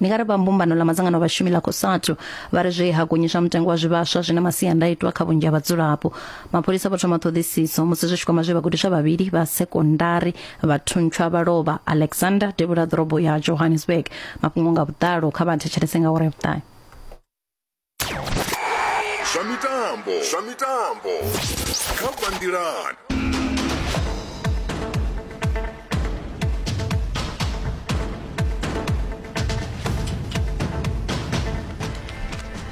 ndi nga ri vha mbumbano ḽa madzangano a vhashumi ḽa cosatu vha ri zwe ha gonyiswa mutengo wa zwivhaswa zwi na masiandaitwa kha vhunzhi ha vhadzulapo mapholisa vho thoma ṱhoḓisiso musi zwi tshi kwama zwe vhagudiswa vhavhili vha sekondari vha thuntsha vha lovha alexander devhula ḓorobo ya johannesburg mafhungo nga vhuḓalo kha vha thetshelese nga uri ya vhuṱahe zwa mitambo zwa mitambo kha banngilani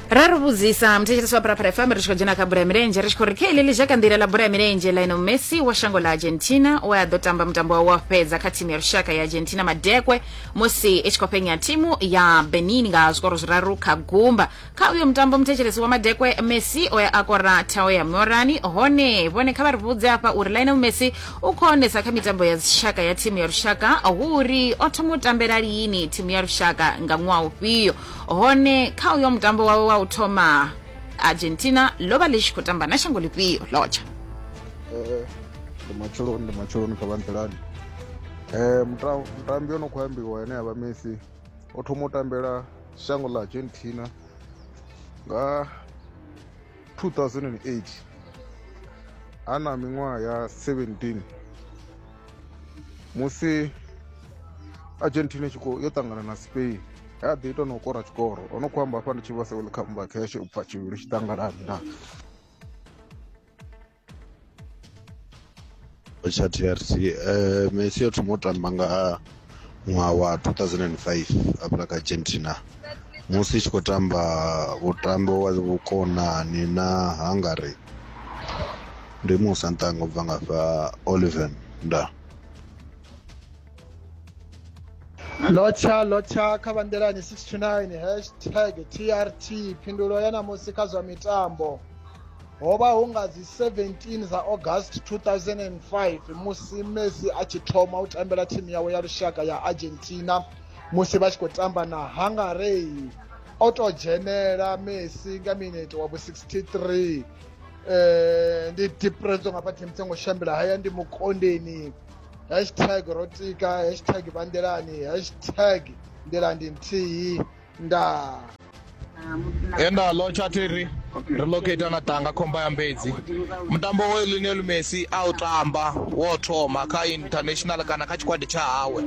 ra ri vhudzisa muthetshelesi wa parapara fm ri tshi khou dzhena kha bola ya milenzhe ri tshi khou ri kha iḽeḽi zha ka nḓila ḽa bola ya milenzhe lionel messi wa shango ḽa argentina we a ḓo tamba mutambo wawe wa fhedza kha thimu ya lushaka ya argentina madekwe musi i tshi khou fhenya thimu ya benin nga zwikoro zwiraru kha gumba kha uyo mutambo muthetshelesi wa madekwe messi o ya a kora thao ya morani hone vhone kha vha ri vhudze afha uri lionel messi u khou onesa kha mitambo ya dzishaka ya thimu ya lushaka hu uri o thoma u tambela lini thimu ya lushaka nga ṅwaha ufhio hone kha uyo mutambo wawe wa u thoma argentina lo vha ḽi tshi khou tamba na shango ḽifhio lotsha ndi matsheloni ndi matsheloni kha vha nḓilani Eh, mutambi o no khou ambiwa ane a vha messi o thoma u tambela shango ḽa argentina nga 2008 a na miṅwaha ya 17 musi argentina tshi khou yo ṱangana na spain ya ḓi ita na u kora tshikoro o no khou amba hafha ndi tshi vha seul comeback ya tshi ubva tshivhili tshi ṱangalani na tsha trc um messi o thoma u tamba nga ṅwaha wa 2005 afha kha argentina musi i tshi khou tamba vhutambo wa vhukonani na hungary ndi musa nṱanga u bva nga fha oliven nda lotsha lotsha kha vhanḓelani 69 hashtag trt phindulo ya namusi kha zwa mitambo ho vha hu nga dzi 17 dza august 2005 musi messi a tshi thoma u tambela thimu yawe ya lushaka ya argentina musi vha tshi khou tamba na hungarey o tou dzhenela messi nga minete wa vhu 63 um ndi depreso nga phathi mutsengo shambela haya ndi mukondeni hashtag rotika hashtag vandelani hashtag ndelandi nthihi ndaa enda lo chatiri ri locata na tanga khomba ya mbedzi mutambo wa lionel messi a u tamba wo thoma kha international kana kha tshikwadi tsha hawe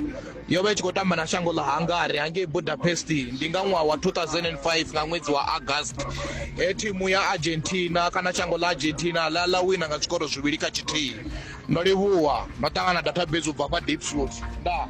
yo vha i tshi khou tamba na shango ḽa hungary hangei budapest ndi nga ṅwaha wa 2005 nga ṅwedzi wa august he thimu ya argentina kana shango ḽa argentina ḽa ḽa wina nga zwikoro zwivhili kha tshithihi Ndo livhuwa. Ndo ṱangana database u bva kwa Diepsloot. Ndaa.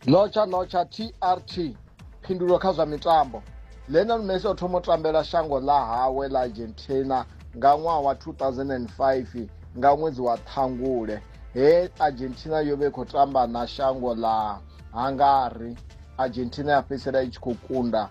Notsha notsha TRT phindulo kha zwa mitambo Lionel Messi o thoma u tambela shango ḽa hawe ḽa Argentina nga ṅwaha wa 2005 nga ṅwedzi wa Ṱhangule he Argentina yo vha i khou tamba na shango ḽa Hungary Argentina ya fhedzisela i tshi khou kunda